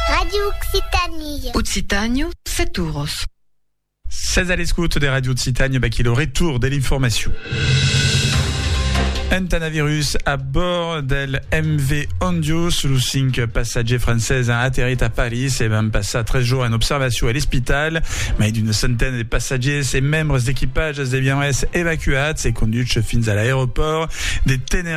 Radio Occitanie. Occitània, set oros. Sètz a l'escouta de Radio Occitània, vaquí lo retour de l'informacion. Un tanavirus a bord del MV Ondius, los cinc passatgers français han aterrit a París e van passar tres jours en observació a l'espital. Mai d'una centena de passatgers e membres d'equipatges devián es evacuats e conduchs fins a l'aeropòrt de Tenerife.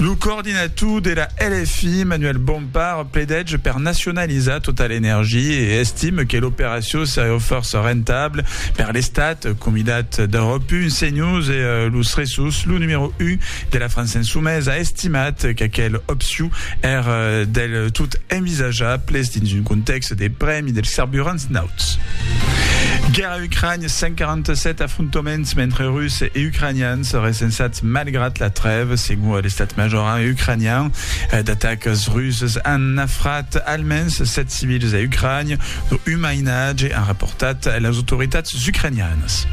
Lo coordinator de la LFI, Manuel Bompard, pledètge per nacionalizar tota l'energia e estime que l'operacion seriá fòrça rentabla per l'Estat, comidat d'Europe Un, CNews e Los Ressus. Lo numèro 1 de la França Insumesa a estimat qu'aquel opcion èr del tot envisajable dins un contèxt de prèmi dels carburants nauts. A Ucrània, 147 afrontaments mentre Russes e Ucranians recensats malgrat la trèva, segon l'estat major ucranian. D'atacas russes an nafrat almens 7 civils a Ucrània, lo un mainatge, an raportat las autoritats ucranianas.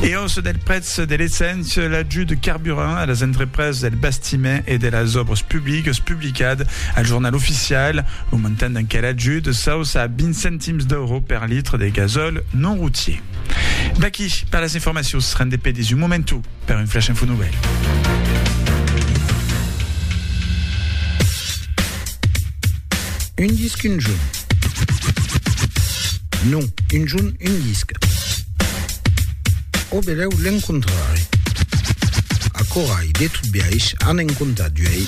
E òssa del prètz Se deleçant sus l'ajut de carburant a las entrepresas del bastiment e de las òbras publicas publicat al Jornal Oficial lo montant d'enquel ajut s'auça a 20 centims d'euro per litre de gasòl non routier. D'aquí per las informacions, rende pedis un momentu per un flash info nouvelle. Un disc, un junt. Non, un jorn, un disc. Au belèu l'encontrarè. Aquò ai, de tot biais, an en comptat uèi,